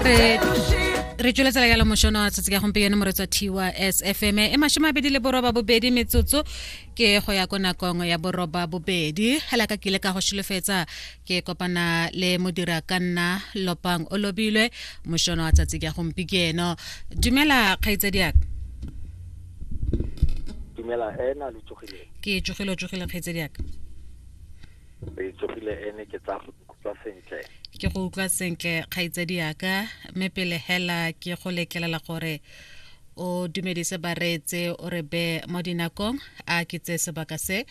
re re tsweletsela yalo mošono wa tsatsi ka gompieno moretsa thiwa sfm e mashome a bedi le boroba bobedi metsotso ke go ya ko nakong ya boroba bobedi hela ka kile ka go šholofetsa ke kopana le modira ka nna lopang o lobilwe mošono wa tsatsi ka gompieno dumela kgaitsediaka dumela ena le tsogile ke tsogile o tsogile kgaitsediaka re tsogile ene ke tsa ke go utlwa sentle kgaitsedi yaka mme pele hela ke go letlelela gore o dumedise bareetse o re be mo dinakong a ke tse sebaka se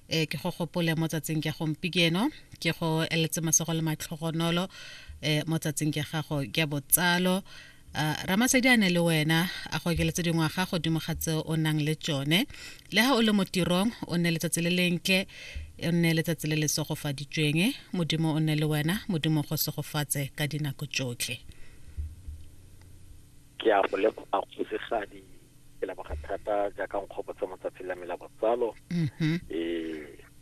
e ke go gopole mo tsatsing ke gompieno ke go eletse masogo le matlhogonolo e mo tsatsing ke gago ke botsalo Uh, ramasedi a ne le wena a go okeletse dingwaga godimo ga tse o nang le tsone le ga o le mo tirong o nne letsatsi le lentle o nne letsatsi le le segofaditsweng modimo o nne le wena modimo go segofatse ka dinako tsotlhe ke a go leboga kgosigadi ke leboga thata jaaka nkgopotsa mo tsatsing la me la botsalo mm -hmm. e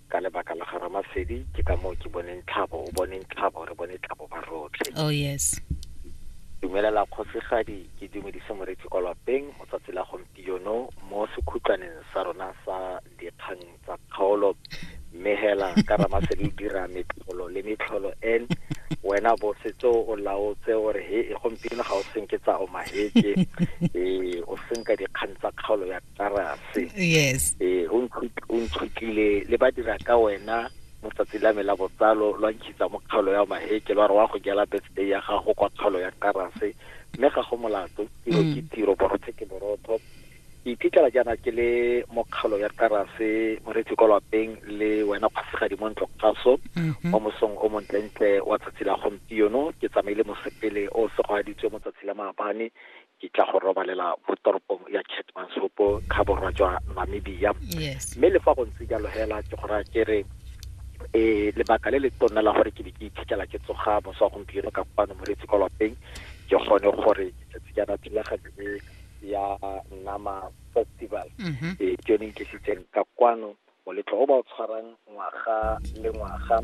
Ka lebaka la ga Ramasedi, ke ka moo ke boneng tlhabo, o boneng tlhabo, re bone tlhabo ba rotlhe. Oh yes. Dumelela kgosigadi, ke dumedise moretsi kwa lwapeng mo tsatsi la gompieno mo sekhutlwaneng sa rona sa dikgang tsa kgaolo. Mme hela ka Ramasedi o dira metlholo le metlholo en wena bo setse o laotse o re he e gompieno ga o senke tsa omaheke ee o senka dikgang tsa kgaolo ya tarase yes ee o ntshutlile le ba dira ka wena mo tsatsi la me la botsalo lwa nkitsa mo kgaolo ya maheke lwa re wa go jela birthday ya gago kwa kgaolo ya tarase mme ga go molato tiro ke mm. tiro borothe ke borotho ke iphitlhela jaana ke le mo kgaolo ya tarase moretsi kwa lwapeng le wena kgosigadi mo ntlo kgaso mm-hmm. mo mosong o montlentle wa tsatsi la gompieno ke tsamaile mosepele o segwaditswe mo tsatsi la maabane di tla go robalela mo toropong ya Keetmanshoop kha borwa jwa Namibia yes mme le fa go ntse jalo hela ke go raya ke re eh lebaka le le tonna la gore ke be ke iphitlhela ke tsoga mosa wa gompieno ka kwano moretsi kwa lapeng ke gone gore ke tletse jaana thulaganyo e ya nama festival mhm eh ke yone e tlisitseng ka kwano Moletlo o ba o tshwarang ngwaga le ngwaga,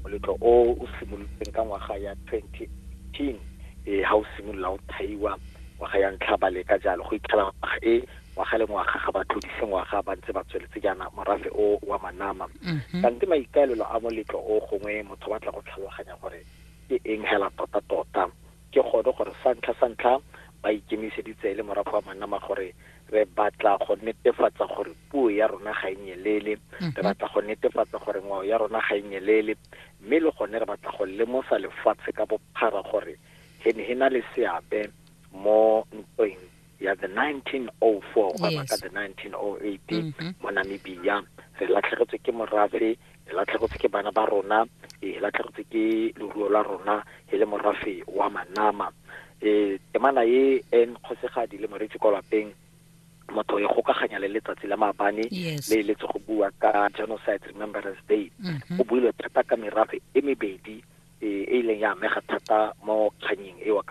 moletlo o o simolotseng ka ngwaga ya 2018 e ha o simolola o thaiwa ngwaga ya ntlha ba leka jalo go itlhela ngwaga e ngwaga le ngwaga ga ba tlodise ngwaga ba ntse ba tsweletse jaana morafe o wa manama mhm. kante maikaelelo a moletlo o gongwe motho batla go tlhaloganya gore ke eng hela tota tota ke gone gore sa ntlha sa ntlha ba ikemiseditse le morafe wa manama gore re batla go netefatsa gore puo ya rona ga e nyelele mhm. re batla go netefatsa gore ngwao ya rona ga e nyelele mme le gone re batla go lemosa lefatshe ka bophara gore he ne he na le seabe mo ntweng ya the 1904 gona ka the 1908 mhm. mo namibia re latlhegetswe ke morafe e latlhegotse ke bana ba rona e latlhegotse ke leruo la rona e le morafe wa manama e temana e en kgosegadi le moretsi kwa lapeng motho e gokaganya le letsatsi la maabane yes. le eletse go bua ka genocide remembrance day mm -hmm. go builwe thata ka merafe e mebedi e e ileng ya amega thata mo kganyeng eo ka